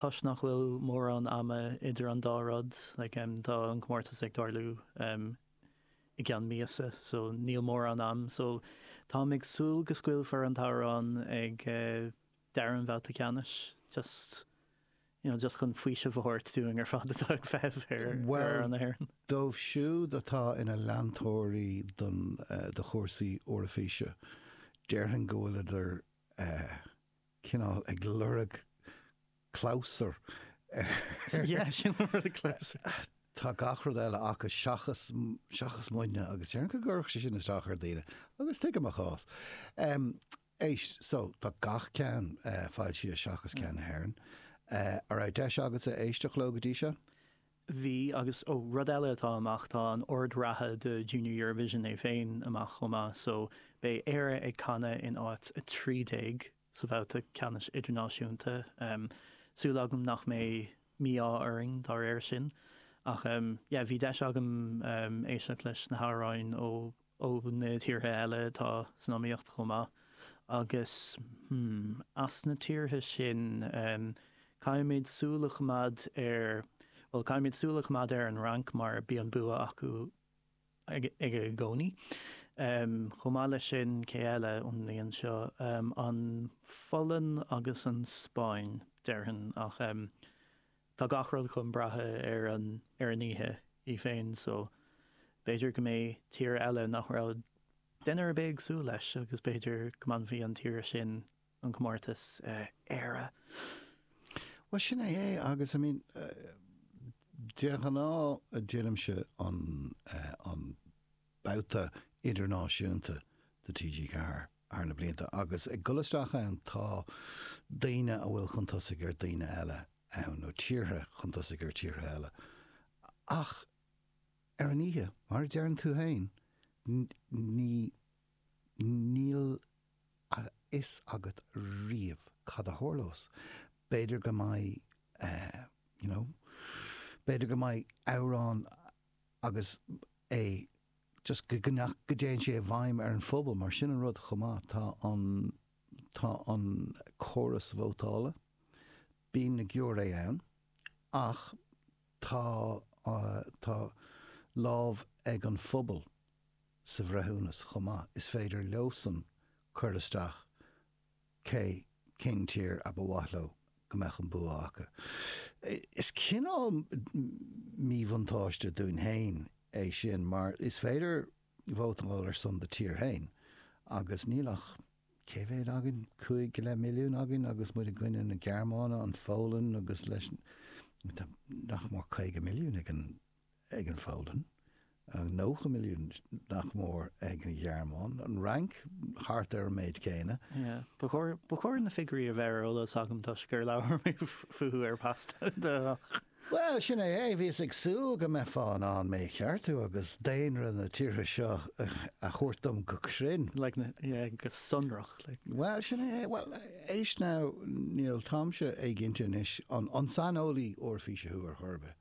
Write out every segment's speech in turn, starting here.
Toisc nach bhfuil mórán ama idir an dá rud, tá an comórtas ag tarlú i gceann míosa, so níl mórán ama, so táim ag súil go scaoilfear an t-amhrán ag deireadh an bhabhta ceannais, just, you know, just chun faoiseamh a thabhairt dúinn ar fad atá ag feitheamh ar amhrán na hÉireann. Bhuel, dóibh siúd atá ina leantóirí don, do chúrsaí Eoraifíse, déarfainn go bhfuileadar eh. cineál ag lorg clabhsur ar. Tá gach rud eile aca seachas muidne agus déarfainn go gcuirfeadh sé sin isteach ar daoine agus tuigim a gcás. Éist so, tá gach ceann foilsithe seachas ceann na hÉireann. An raibh deis agatsa éisteacht leo go dtí seo? Bhí, agus, ó, rud eile atá amach, tá an ord reatha do Junior Eurovision é féin amach chomh maith, so beidh Éire ag canadh in áit 13 sa bhabhta ceannais idirnáisiúnta. Súil agam nach mbeidh mí-ádh orainn dá réir sin. Ach, yeah, bhí deis agam éisteacht leis na hamhráin ó. ó na tíortha eile atá san iomaíocht chomh maith, agus as na tíortha sin caithfimid súil a choimeád ar, bhuel, caithfimid súil a choimeád ar an Fhrainc mar bíonn bua acu i gcónaí. Chomh maith leis sin, cé eile ón mbliain seo, an Pholainn agus an Spáinn, déarfainn, ach. Tá gach rud chun brath ar an oíche í féin so b'fhéidir go mbeidh tír eile nach raibh duine ar bith ag súil leis agus b'fhéidir go mbainfidh an tír sin an comórtas, Éire! Bhuel, sin é é agus I mean de ghnáth déanaimse an babhta idirnáisiúnta do TG4 thar na blianta agus ag dul isteach ann tá daoine a bhfuil chun tosaigh ar dhaoine eile ann nó tíortha chun tosaigh ar thíortha eile ach ar an oíche, mar a deireann tú féin, ní, níl a fhios agat riamh cad a tharlós. B'fhéidir go mbeidh eh, you know, b'fhéidir go mbeidh amhrán agus é just go nach go dtéann sé i bhfeidhm ar an phobal mar sin an rud chomh maith tá an tá an córas vótála bíonn na giúiré ann ach tá tá lámh ag an phobal sa bhreithiúnas chomh maith is féidir leosan cur isteach cé, cén tír a ba mhaith leo go mbeadh an bua acu? Is cineál míbhuntáiste dúinn féin é sin mar is féidir vótáil ar son do thír féin agus níl ach, cé mhéad againn, cúig go leith milliún againn agus muid i gcoinne na Gearmáine, an Pholainn agus leis, nach mór caoga milliún ag an. ag an Pholainn, an 90 milliún nach mór ag an Ghearmáin, an Fhrainc thart ar an méid céanna. Ba chóir na figiúirí a bheith ar eolas agam toisc gur labhair mé fúthu ar Pasta do Ghach. Bhuel, sin é, bhíos ag súil go mbeifeá in ann mé a cheartú agus daonra na tíortha seo a thabhairt dom go cruinn. Go sonrach. Bhuel, sin é, bhuel, éist now, níl táimse éiginnte anois, an saineolaí Eoraifíse thú ar chor ar bith?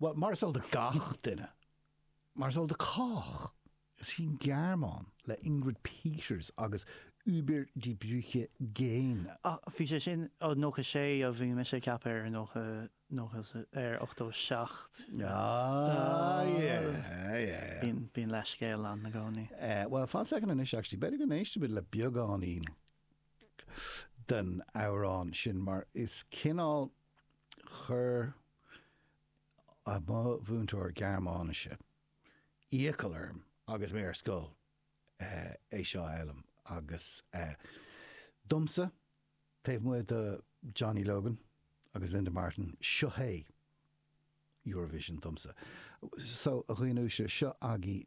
Bhuel, mar is eol do gach duine, mar is eol do cách, is í an Ghearmáin, le Ingrid Peters agus Über die Brücke gehen, a. Ach bhí sé sin ó 96 a bhí mise ag ceapadh ar 90, 90 sa, ar 87. Ah, yeah, yeah, yeah. Bíonn leithscéal ann i gcónaí. Eh, bhuel, fan soicind anois, actually, b'fhéidir go n-éistfidh muid le beagáinín den amhrán sin, mar is cineál Chuir mo mhúinteoir Gearmáinise iachall orm agus mé ar scoil é seo a fhoghlaim agus domsa, taobh amuigh de Johnny Logan agus Linda Martin, seo é Eurovision domsa. So, a dhaoine uaisle, seo agaibh